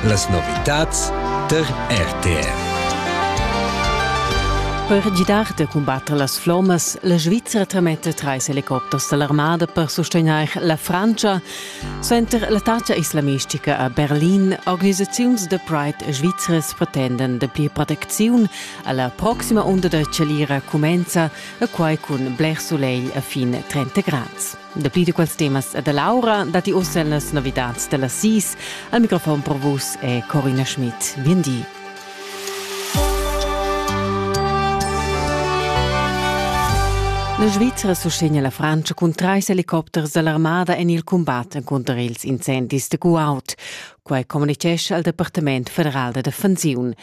Las novitads tar RTR. Per gidar da cumbatter las flommas, la Svizzera trametta trais helicopters da l'armada per sustegnair la Frantscha. Suenter l'attacca islamistica a Berlin, organisaziuns da Pride svizras pretendan dapli protecziun. Alla proxima unda da chalira cumenza e quai cun bler sulegl a fin 30 grads. Dapli da quels temas e da Laura datti uss en las novitads da las sis. Al microfon pro vus è Corina Schmidt. Bien di. La Svizzera sustegna la Francia cun trais helicopters dall'armada en il cumbat encunter ils incendis da Kuwait. Quai communitgescha al Departament federal da defensiun.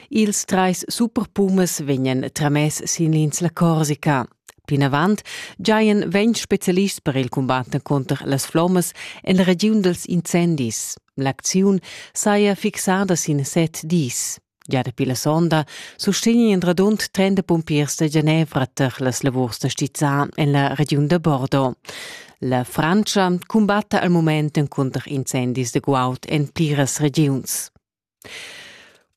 Ils trais superpumas vegnan tramess sin l'insla Corsica. Plinavant giajan ventg spezialists per il cumbat cunter las flommas en la regiun dals incendis. L'acziun saja fixada sin set dis. Gia dapi la sonda sustegnan radund 30 pumpiers da Genevra tar las lavurs da stizzar en la regiun da Bordeaux. La Frantscha cumbatta al mument encunter incendis de guaud en pliras regiuns.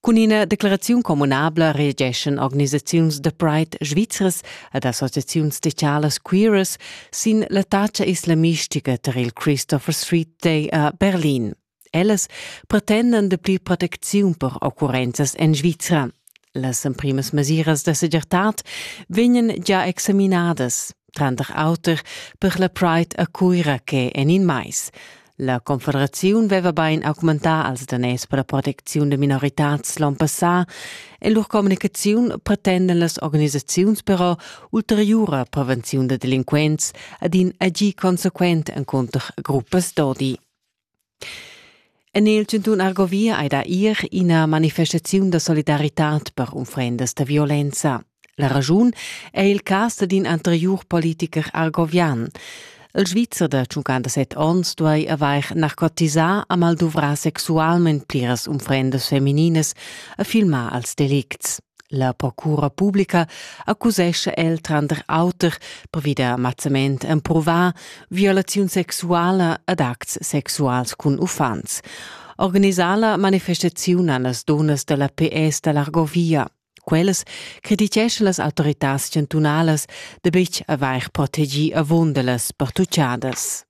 Cun ina declaraziun communabla reageschan organisaziuns da Pride svizras ed associaziuns socialas queeras sin l'attacca islamistica tar il Christopher Street Day a Berlin. Ellas pretendan dapli protecziun per occurrenzas en Svizra. Las emprimas mesiras da segirtad vegnan gia examinadas, tranter auter per la Pride a Cuira che en in mais. La Confederaziun veva bein augmentà als daners per la protecziun da minoritads l'onn passà e lur communicaziun pretenden las organisaziuns però ulteriura prevenziun da delinquents ad in agir consequent encunter gruppas d'odi. En il chantun Argovia ei da ir ina manifestaziun da solidaritad per unfrendas da violenza. La raschun è il cas d'in anteriur politiker argovian. Il Svizzer da 57 onns duai avair narcotisà a mal duvrà sexualment pliras unfrendas femininas a filmar als delicts. La procura publica accusescha el tranter auter pervi da mazzament emprovà violaziun sexuala ed acts sexuals cun uffants. Organisà la manifestaziun a las dunnas da la PS da l'Argovia. Quellas crediteschan las autoritads chantunalas da betg avair protegì avunda las pertuchadas.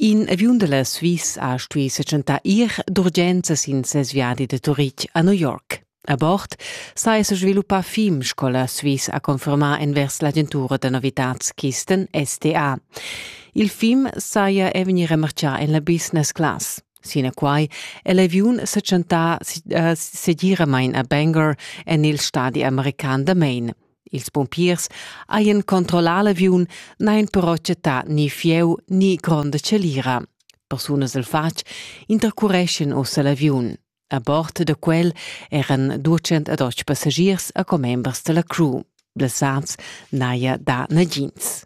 In aviun da la Swiss ha stuì setschentar ir d'urgenza sin ses viadi da Turitg a New York. A bord saja sa sviluppà fim, sco la Swiss ha confermà envers l'agentura da novitads Kisten STA. Il fim saja è vegnì remartgà en la business class. Sinaquai è l'aviun sa tschentà uh, segiramain a Bangor en il stadi american da Maine. Ils pumpiers hajan controllà l'aviun, n'hajan però chattà ni fieu ni gronda chalira. Persunas al fatg intercureschan ussa l'aviun. A bord da quel eran 208 passagiers e commembers da la crew. Blessads n'haja dà nagins.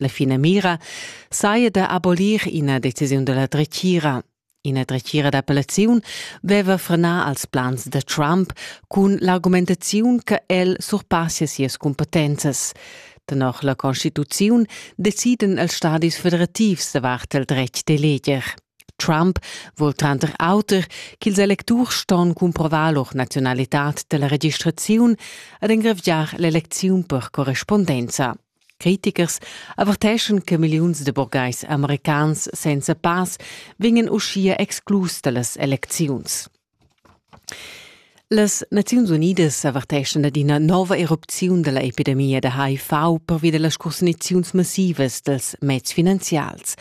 La finamira saja da abolir ina decisiun da la dretgira. Ina dretgira d'appellaziun veva frenà als plans da Trump cun l'argumentaziun che el surpassia sias cumpetenzas. Tenor la Constituziun deciden els stadis federativs davart il dretg d'eleger. Trump vul tranter auter ch'ils electurs ston cumprovar lur nazionalitad dalla registraziun ed engraviar l'elecziun per correspondenza. Critichers averteschan che milliuns de burgheis americans senza pass vegnan uschia exclus dallas elecziuns. Las Naziuns Unidas averteschan ad ina nova erupziun dalla epidemia da HIV pervi dallas cusniziuns massivas dels meds finanzials.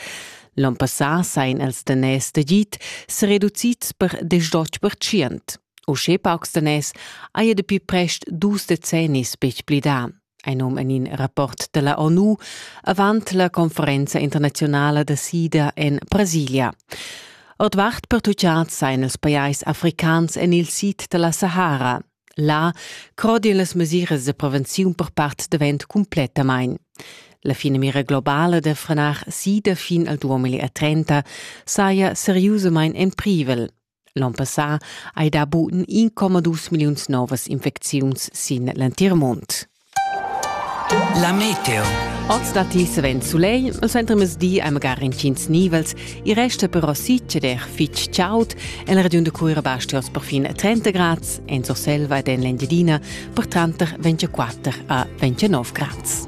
L'on passà sain els daners d'agid se reducits per 18%. Uschè paucs daners haja dapi prest dus decennis betg plidà. Ein um en in rapport della ONU avant la conferenza internazionala da sida en Brasilia. Ordvart pertucciads sein els pajais africans en il sid della Sahara. Là crodien las mesiras de prevenziun per part davent completamain. La fine mira globale de frenar sida fin al 2030 saja seriusament en privel. L'on passà hai dà buca 1,2 milliuns novas infecziuns sin l'entir mund. La meteo. Oz datti savens sulegl, il centremezdi hai magari intgins nivels, i resta però succeder fitg chaud. En la regiun da Cuira basti oz per fin 30 grads, en Surselva ed en l'Engiadina per tranter 24 a 29 grads.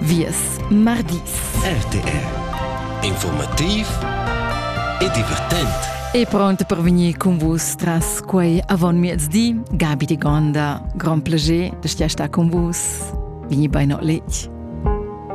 Vies mardis. RTR Informativ e divertent. E pronto per venir con vus tras quei avon miezdi. Gabi de Gonda, grand plaisir de stia sta con vus. Veni bei noch letg.